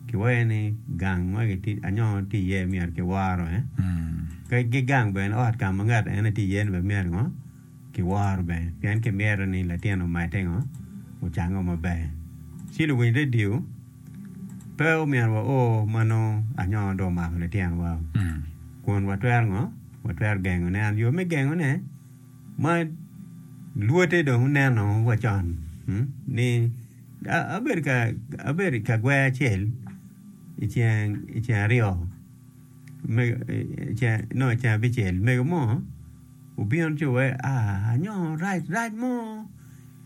Kiwaye ni gang ma anyongo tye iye myero kiworo bene, ki gang bene ot ka ma ngat ene tye iye-ni bene myero kiworo bene pien kimyero ni latin omedde ocange maber. Ci luwiny redio pe omyero wa o ma nongo anyongo dong omako litinowa kun watwero gengone. And yo me gengone ma lwote dong oneno wa con ni. Abedo i kagwer acel i ceng aryo nongo i ceng abicel mego mo obino ci owaci anyongo rac rac mo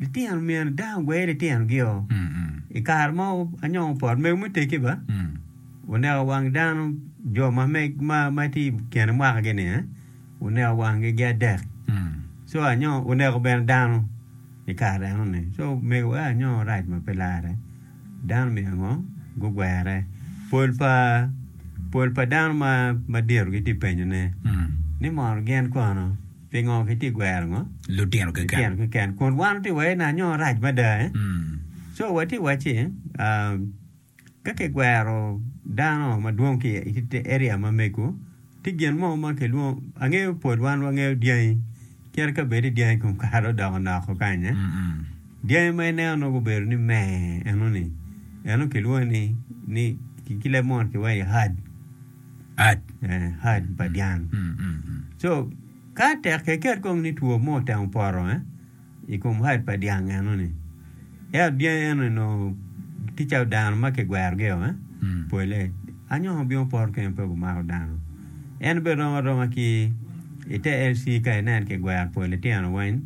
litino myero dano ogwe litinogio i kare mo anyongo opot mego me teggi ba oneko wang dano jo ma tye i kine mwakagi ni. wuneko wangi gi adek so anyo wuneko bene dano i kare eno ni so mego aye anyo rac ma pe lare dano myero ango gugwere pol pa pol pa dano ma madito gitye penyo ne ni mono gin kono pingo gitye gwero ngo lutino keken kun wan watye iwaci ni anyo rac mada so watye iwaci Ka kigwero dano madwong ki i area ma mego, tye gin mo ma kilwongo, angeyo pol wan wangeyo dyangi, cito ka bedi dyangi kom kare odok onoko kanya. Dyangi ma ineno nongo gubedo ni me enoni, eno kilwongo ni, ni ki ki leb mono kiwaco ni herd. Ad. Eh, herd pa dyang. So, ka tek keket kong ni two mo otemo poto, eh, i kom hide pa dyang enoni. Ento dyangi enoni onongo tye calo dano ma kigwerogi-o, pole. Anyoka obino poto kene pe gumako dano. En bene rom aroma ki i te LC ka inen kigwero pol litino weng.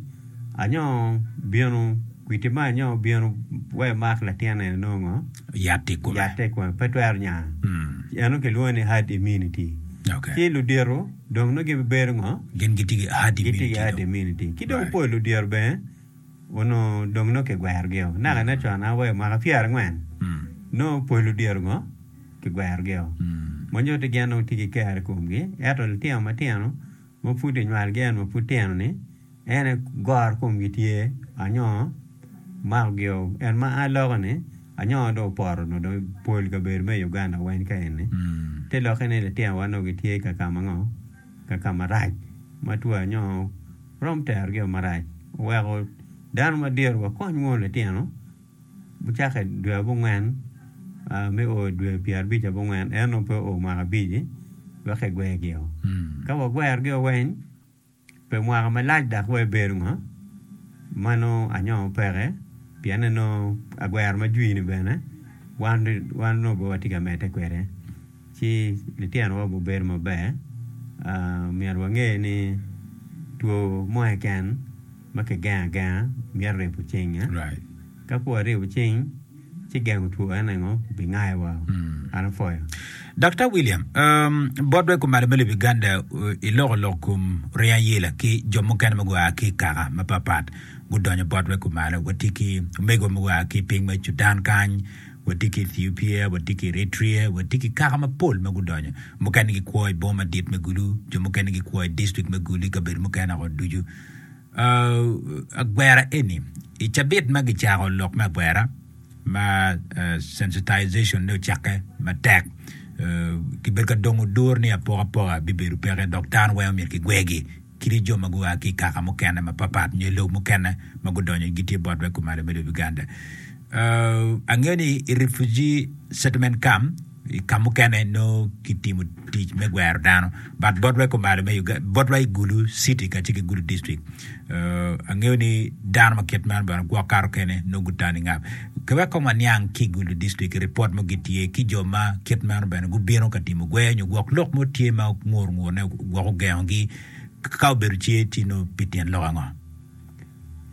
Anyoka obino, kwiti ma anyoka obino wek emak latin eni nongo ngo? Yatte i kome. Yatte i kome, pe twero nya. Eno kilwongo ni herd immunity. Ci ludito. Dong nongo gibibedo ngo? Gin gitye ki ahadi mini dong. Gitye ki ahadi mini dong. Ki dong pol odiro bene onongo dong nongo kigwerogio. Naka nen con an aweyo mwaka pyera angwen, nongo pol odiro ngo? Kigwerogio. Ma nyuti gin nongo tye ki kero i komgi. Eto litino matino ma pud kinywalgi ento ma pud tino ni, En aye goro komgi tye anyoo mako gio en ma a loka ni anyoo dong opoto nyo dong pol kabedo me Uganda weng ka eni te lokke ni litino wa nongo gitye ka kama ngo ka kama rac ma two anyoo rom tero gi o marac oweko dano madito wa kony mono litino cake i dwe abongwen me oo dwe pyera abic abongwen en nongo pe oo mwaka abici wek ki gwer gi o ka wa gwer gi o weng Pe mwaka malac dok wa ebedo ngo, mano anyongo peke pien anongo agwero ma jwi ni bene wan onongo pe watye ka medde kwede ci litino wa gubedo maber myero wange ni two mo keken ma kigengo agenga myero ribo cinge. Ka kwo aribo cing ci gengo two en engo bi ngaye wa an apwoyo. Daktar William, bot wek kumalo me lobo Uganda iloko lok kom rye ayela ki jo mukene ma gua ki ikaka mapat pat gudonyo bot wek kumalo watye ki omego ma gua ki piny me Cudan kany watye ki Ethiopia watye ki Eritrea watye ki kaka mapol ma gudonyo mukene gikwo iboma madit me Gulu jo mukene gikwo idistrict me Gulu ikabedo mukene o ducu agwera eni i cabit ma gicako lok me agwera ma sensitization ne ocakke matek kibedo ka dongo odur ni apokapoka bibedo peke dok dano weng myero kigwegi kadi jo ma gua ki i kaka mukene mapapat nyo lobo mukene ma gudonyo gitye bot me kumalo me lobo Uganda angeyo ni i refugee settlement camp I ka mukene nongo kitimo tic me gwero dano but botwa i kumalo me Uga botwa i Gulu city kacel ki Gulu district uh, angeyo ni dano ma kit meno bene gwok kato kene nongo gutani ngap. Ka wek kong waniang ki i Gulu district ripot mo gitye ki jo ma kit meno bene gubino ka timo gweyo nyo gwok lok mo tye ma ngur ngur ne gwok ogengogi ka obedo ce tye nongo pi tyen lok ango?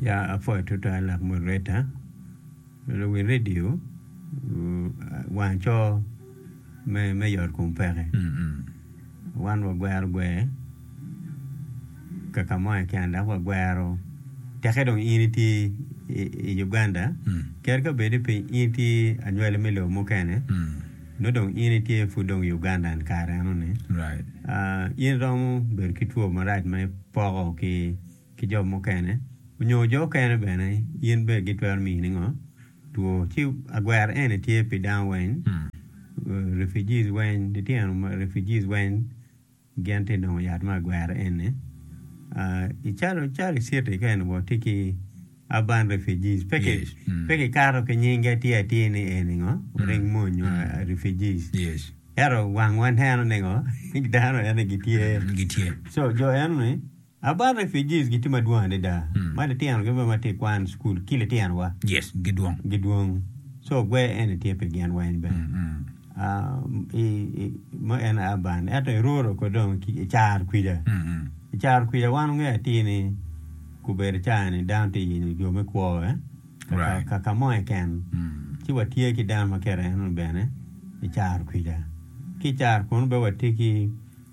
Ya apwoyo twatwal lak moderator. Luwil redio wang co me yot kom peke. Wan wagwero gwer kaka mo keken dok wagwero teke dong in itye i Uganda kadi ka bed ni piny in itye anywali me lobo mukene nongo dong in itye pud dong i Ugandan kare eno ni in iromo bedo ki two marac ma ipoko ki ki jo mukene onyo jo okene bene gin bene gitwero miyi ningo two ci agwero eni tye pi dano weng refugees weng litino ma refugees weng gin tye nongo yat me agwero eni calo calo i city keni wa tye ki urban refugees pe ki kato ki nyinge atir atir ni eni ngo oring mo nyo refugees ento wang wa neno ningo dano eni gitye so jo eno ni About refugees gitye madwong adada ma litino gi bene ma tye kwan school ki litino wa yes gidwong gidwong so gwer eni tye pi gin weng bene ma en urban ento i rural ko dong i caro kwica i caro kwica wan wange atir ni gubedo caa ni dano tye yenyo jo me kwo kaka mo keken ci wa tye ki dano ma kit eno ni bene i caro kwica ki caro kunu bene wa tye ki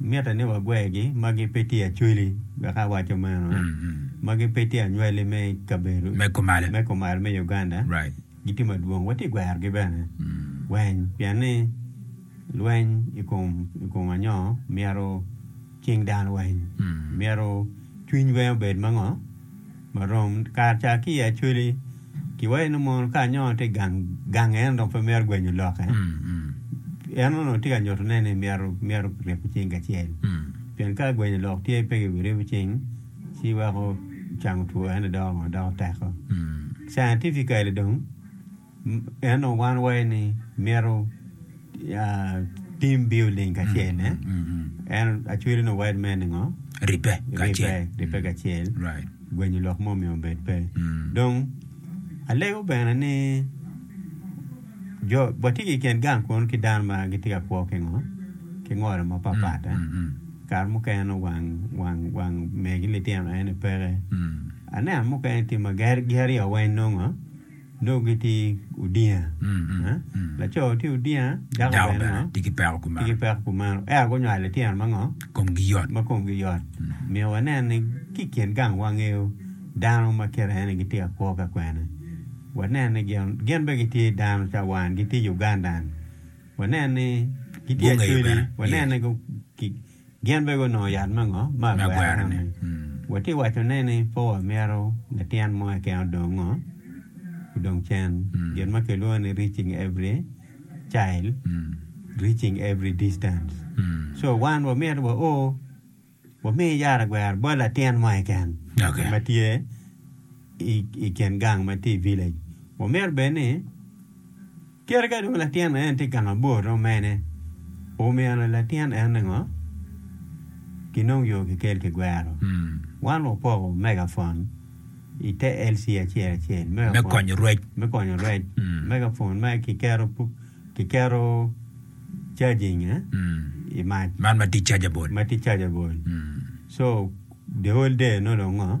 Mitte ni wagwergi ma gipe tye acweli, wek awaco meno, ma gipe tye anywali me kabedo me kumal me Uganda. Gitye madwong. Watye gwerogi bene. Weny? Pien ni lweny i kom i kom anyoo myero cing dano weny. Myero cwiny weny obed ma ngo? ma rom kare ca ki i Acholi ki wai nongo mono ka anyongo tye gang gang en dong pe mito gwenyo lokke en onongo tye ka nyuto ne ni myero myero ki ryebo cing kacel pien ka gwenyo lok tye pe ki ryebo cing ci weko cango two ene doko doko teko scientifically dong Ento wan waye ni myero tim biyo ling kacel ne en acwiri ni word man ngo ripe kacel ripe kacel gwenyo lok mo mi obed pe dong alego bene ni jo watye ki ken gang kunu ki dano ma gitye ka kwo ki ngo ki ngolo ma pat pat kare mukene nongo wang wang wang megi litino en ni peke aneno mukene tye ma geri o weng nongo Dong gitye odinga. Laco tye odinga, dako bene tye ki peko kumeno. Ento gunywalo litino ma komgi yot. Myero wanen ni ki i kin gang wangeyo dano ma kite en aye gitye ka kwo ka kwene. Wanen ni gin bene gitye dano calo wan, gitye Ugandan. Wanen ni gitye Acoli, wanen ni Gin bene gunongo yat me ngo me agwera-ni? Watye ka wacone ni pe wamito latyen mo keken odong ngo odong cen. Gin ma kilwongo ni reaching every child, reaching every distance. So wan wamyero wa o wami yat agwera bot latin mo keken ma tye. i kin gang ma tye i village wa myero bed ni kite ka dong latin en tye gang abor dong mene omyero latin en ningo ki nong yo ki kel ki gwero wan wa poko mega phone i te LC acel acel me konyo rwec me konyo rwec mega phone ma ki keto ki keto charging i mac man ma tye chargeable ma tye chargeable so the whole day nongo ngo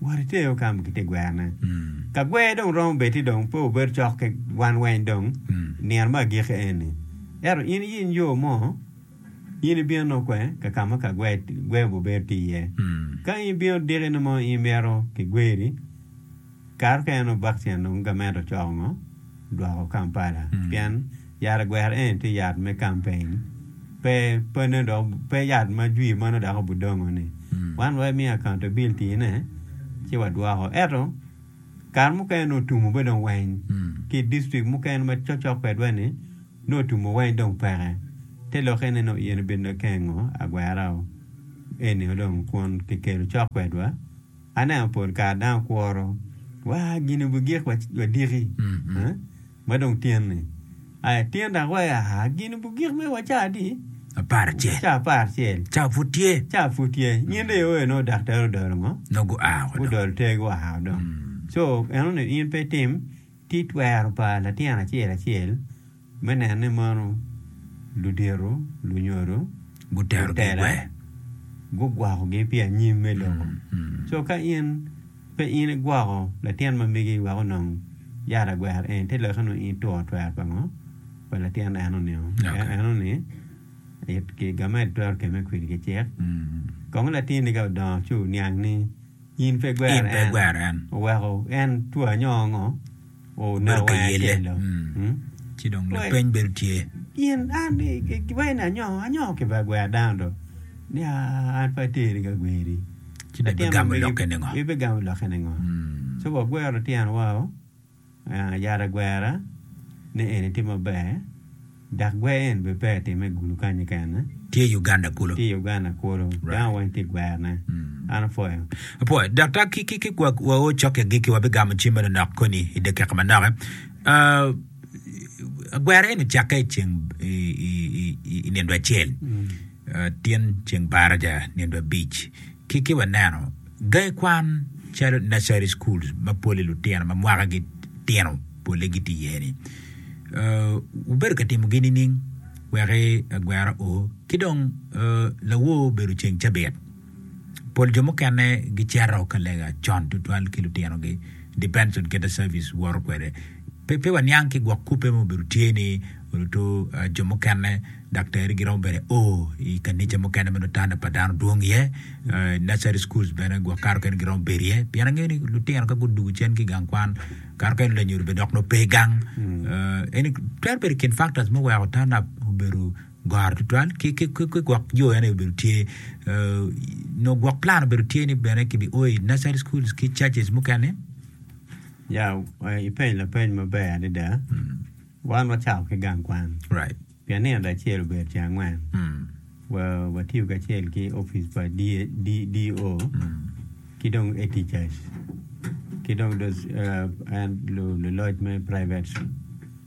Wot ite yo ka ki te gwerone. Ka gwer dong romo bed-di dong pe wubedo cok ki wan weng dong i nino me agikki eni. Ento in iyiny yo mo, in ibino nongo kwe ka ka ma ka gwer obibedo tye iye. Ka in ibino diki nongo in imito kigweri, kare mukene nongo bakcian dong gamente ocoko ngo? Dwoko Kampala. Pien. Yat agwera eni tye yat me campaign pe pe nongo dok pe yat ma jwi ma nongo dok obudongo ni wan wa imiyo accountability ne ci wadwoko eto kare mukene nongo otumo be dong weng ki district mukene ma cocok kwedwa ni nongo otumo weng dong peke te lokke ne nongo in ibino kengo agwera o enio dong kun kikelo cok kwedwa aneno pol kare dano kuro wa gini obigik wa diki. Ma dong tyen ni, Aa itino dok wa iaa, gin bu gik me wa ca adi? Apar acel. Ca apar acel. Ca pud tye. Ca pud tye. Nyen ryo oye nongo daktar odolo ngo? Nongo gua woko dong. Gudolo ter gua woko dong. Co, eno ni in pe itim tit twero pa latin acel acel me neno ni mono ludito, lunyodo, Gutero gitela, gigwe. gugwokogi pi anyim me lobo. Co ka in. Pe in igwoko latin ma megi wek onong yat agwero en te lokke nongo in ituro twer pa ngo? Pa latin enoni-o. Pien enoni ki gamed twero kemme kwidi ki cik. Kong latinni ka odongo ci oniang ni in pe igwero en, oweko en twa nyo ngo? bedo ka yelle ci dong lapeny bedo tye. Gin an-ni kibweno ni anyongo, anyongo kibweno gwero dano do nia an pe ateri ka gweri. Ci dong ibigamo lokke ni ngo? Ibigamo lokke ni ngo? So wagwero lityenwa-o, yat agwera ni eni tye maber. Dak gwer en be peya time gulu kany kene. Tye Uganda kulu. Tye Uganda kulu. Right. Dano weng tye gwerone. Mm. An apwoyo. Apwoyo. Daktar, ki, ki, ki wa, wa o cokke agikki, wabigamo cim meno nok koni i dakika manoke. Uh, gwer en ocakke i ceng, i, i, i, i nindo acel. Mm. Tyen ceng baraja nino abic ki ki waneno gangi kwan calo nursery schools ma pole lutino ma mwaka gi tino pole gitye iye ni wubedo ka timo gi nining wek agwera o ki dong lawor obedo ceng cabit. Pol jo mukene gicito ka lega con tutwal ki lutinogi, depends on kit service woto kwede. Pe pe waniang ki gwok kubbe ma obedo tye ni oruto jo mukene daktari giromo bene o i kanica mukene ma nongo tanda pa dano dwong iye, nursery schools bene gwok kato kene giromo bedo iye pien angeyo ni lutino ka gudugo cen ki gang kwan kato kene lanyodi bene dok nongo pe gang. Eni twero bedo i kin factors muweko turn up obedo goro tutwal ki gwok yo ene obedo tye nongo gwok plan obedo tye ni bene ki bi o i nursery school ki churches mukene. Ya i peny lapeny maber adada wan wacako ki gang kwan pien nino lacel obedo ceng angwen wa watiyo kacel ki office pa DO ki dong head teachers ki dong luloc me private.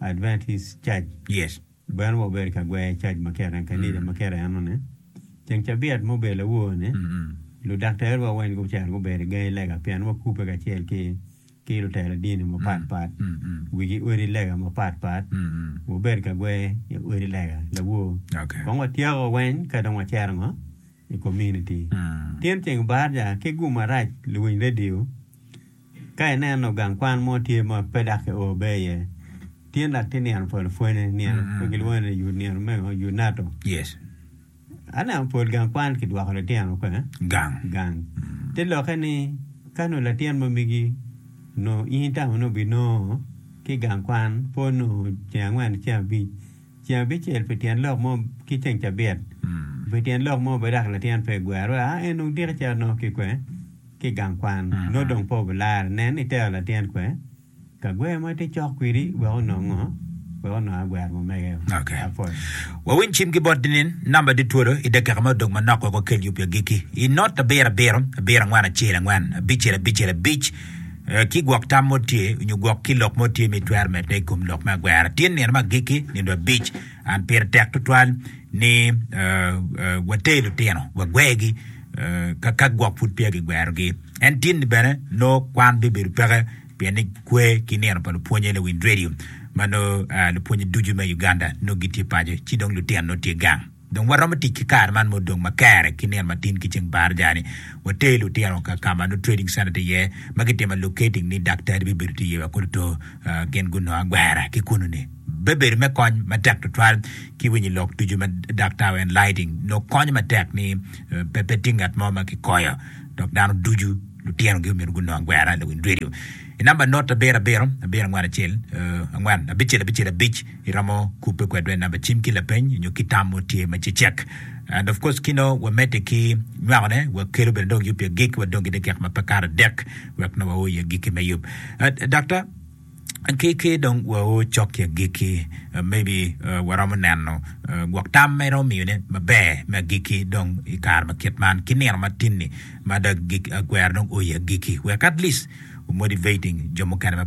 Adventist cac. Yes. Bene wa obedo ka gwer cac ma kera, kanisa ma kera eno ne. Ceng cabiat ma obedo lawor ne, ludaktere wa weng gucito gubedo i gangi lega pien wa kubbe kacel ki ki lutela dini ma pat pat. Wigi odi lega ma pat pat. Wa obedo ka gwer i odi lega lawor. Okay. Kong wa tyeko weng ka dong wa cero ngo? i kominiti. Tin ceng barja ki gum marac luwiny redio. Ka ineno gang kwan mo tye ma pe dok kio be iye, tin dok tye nino pol pwonye, nino ma gilwongo ni yut nino meno, yut nato. Yes. Aneno pol gang kwan kidwoko litino pe. Gang. Gang. Te lokke ni ka nongo latin ma migi nongo in tamo nongo binongo ki gang kwan po nongo ceng angwen ki ceng abic, ceng abicel pi tyen lok mo ki ceng cabit pi tyen lok mo bene dok latin pe egwero a en dong diki cito nongo ki kwe ki gang kwan nongo dong pe obilarre nen itero latin kwe ka gwer ma tye cok kwidi wek onongo ngo wek onongo agwero ma mege o Okay. apol Wawiny cim ki bot ninin namba ditwodo i dakika ma odong manok wek wakel yub i agikki. I not abiro abiro, abiro angwen acel angwen, abicel abicel abic, ki gwok tam mo tye nyo gwok ki lok mo tye ma itwero medde i kom lok me agwera. Ityen nino ma agikki, nino abic, and pire tek tutwal ni water lutino, wagwergi ka ka gwok pud peya gigwerogi. En tin ni bene no kwan bibedo peke pien ni kwe ki nino pa lupwonye Lewin Radio ma no lupwonye ducu me Uganda no gitye paco ci dong lutino no tye gang. Dong waromo tic ki kare man ma odong ma kere ki nino matin ki ceng bar ajani, water lutino ka ka ma nongo trading center tye iye ma kitime locating ni daktari bibedo tye iye wa kodi to gin gunongo agwera ki kunu ni. Bebedo me kony matek tutwal ki winyi lok ducu ma daktar wa enlighting nongo konyo matek ni pe pe tye ngat mo ma ki koyo dok dano ducu lutino gi omyero gunongo agwera lawiny radio I number note abiro abiro abiro angwen acel angwen abicel abicel abic. Iromo kubbe kwedwa i namba cim ki lapeny nyo ki tam mo tye ma cecek and of course kino wa medde ki nywako ne wa kelo bene dong yub i agikki wa dong ki dakika ma pe kato adek wek nongo wa o i agikki me yub Doctor ki ki dong wa o cok ki agikki maybe wa romo neno gwok tam ma iromo miyo ne ma ber me agikki dong i kare ma kit man ki nino ma tin ni ma dong agwero dong o i agikki wek at least motivating jo mukene ma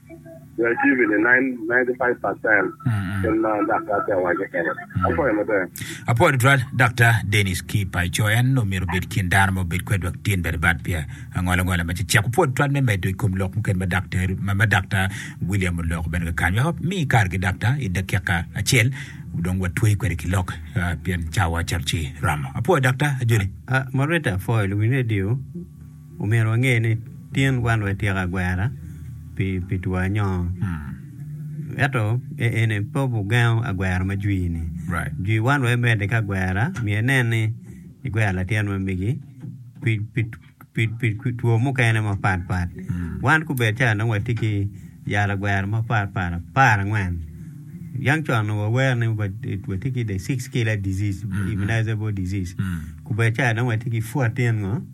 Apwoyo tutwal Daktar Denis ki paco en omyero obed kin dano ma obed kwedwa ki tyen bene bad peya angola angola ma cecek opwod tutwal me medo i kom lok mukene ma Daktar ma Daktar William oloko bene kakany wek omi kare ki Daktar i dakika acel dong watweri kwede ki lok pien cawa cito ci romo apwoyo Daktar ajoli. Moderator, Foil wi radio. Omyero wange ni tyen wan wai tyeko agwera pi two anyongo. Ento eni pe ogengo agwera ma jwi-ni. Jwi wan wai medde ki agwera myero inen ni igwero latyen ma megi pi two mukene mapat pat. Wan kubed ca nongo watye ki yal agwera mapat pat apar angwen, yang con onongo wawero ni watye ki the six killer disease, immunizable disease. Kubed ca dong watye ki fourteen ngo.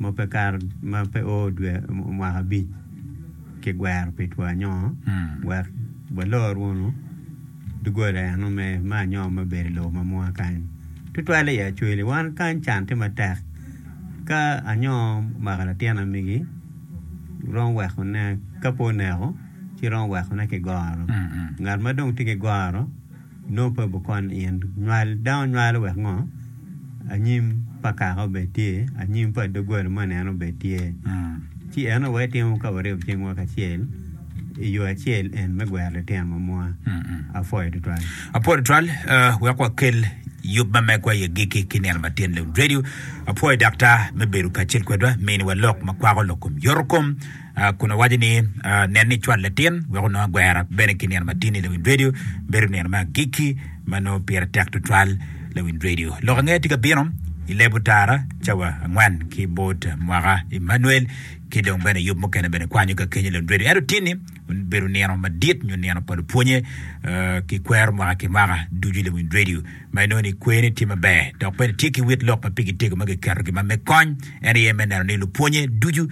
ma pe kato ma pe oo dwe mwaka abic kigwero pi two anyongo wek walor wunu doggola eno me anyongo me bedo i lobo ma mwaka kany tutwal i Acholi. Wan kany can tye matek ka anyongo omako latin amigi romo wekone ka pe oneko ci romo wekone ki goro ngat ma dong tye ki goro. Nongo pe wukon in. Nywal dano nywalo wek ngo? Anyim pa kaka obed tye, anyim pa doggola moni en obed tye. Ci en aye wetimo ka waribo cingwa kacel i yo acel en me gwero litino ma mwa. Apwoyo tutwal. Apwoyo tutwal, wek wakel yub ma megwa i agikki ki nino ma tyen Lewin Radio. Apwoyo Daktar me bedo kacel kwedwa, miniwa lok ma kwako lok kom yoto kom. kun owaco ni, Nen ni icwal latin wek onongo agwera. Bene ki nino matin-ni Lawind Radio bedo nino me agikki ma nongo pire tek tutwal. Lawind Radio lok ange tye ka bino i leb otara cawa angwen ki bot mwaka. Emmanuel ki dong bene yub mukene bene kwanyo ka kenyo Lawind Radio. Ento tin-ni bedo nino madit nyo nino pa lupwonye ki kwero mwaka ki mwaka ducu Lawind Radio. ma inongo ni kwene tye maber dok bene tye ki wit lok ma pigi tego ma kiketo gin ma me kony, en aye me neno ni lupwonnye ducu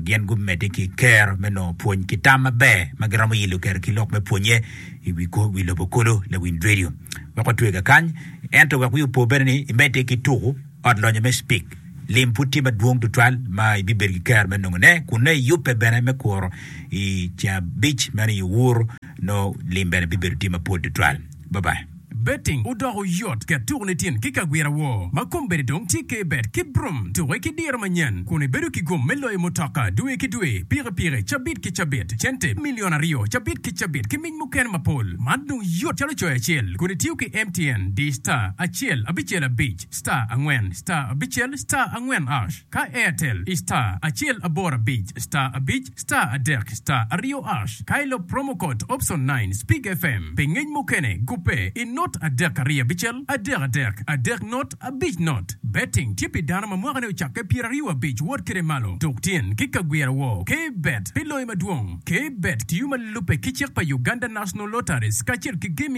gin gumedde ki i kero me nongo pwony ki tam maber ma giromo yilo kero ki lok me pwonnye i wi kor wi lobo kulu. Lawiny redio wek otwega kany, ento wek wi opo bene ni imedde ki tuku Ot Lonyo me Spik. Lim pud tye madwong tutwal ma ibibedo ki kero me nongone kun nongo iyubbe bene me kuro i ceng abic meno i Owuru. Nongo lim bene bibedo tye mapol tutwal. Bye bye. Betting odoko yot ket tuku nitin ki kagwira woo ma kombeddi dong tye ke bet ki brum tuke ki diro manyen kun ibedo ki gum me loyo mutoka dwe ki dwe, piki piki, cabit ki cabit, cente milion aryo cabit ki cabit ki mic mukene mapol. Man dong yot calo coyo acel kun itiyo ki MTN di star acel abicel abic star angwen star abicel star angwen ash. Ka Airtel i star acel aboro abic star abic star adek star aryo ash ka ilop promo code option nine speak FM pi ngec mukene gubbe i not adek ariyo abicel adek adek adek not abic not Betting tye pi dano ma mwakane ocakke pyeraryo abic wot kede malo tuk tyen ki ka gwira woo K Bet pi loyo madwong K Bet tiyo ma lubbe ki cik pa Uganda National Lotteries kacel ki Gaming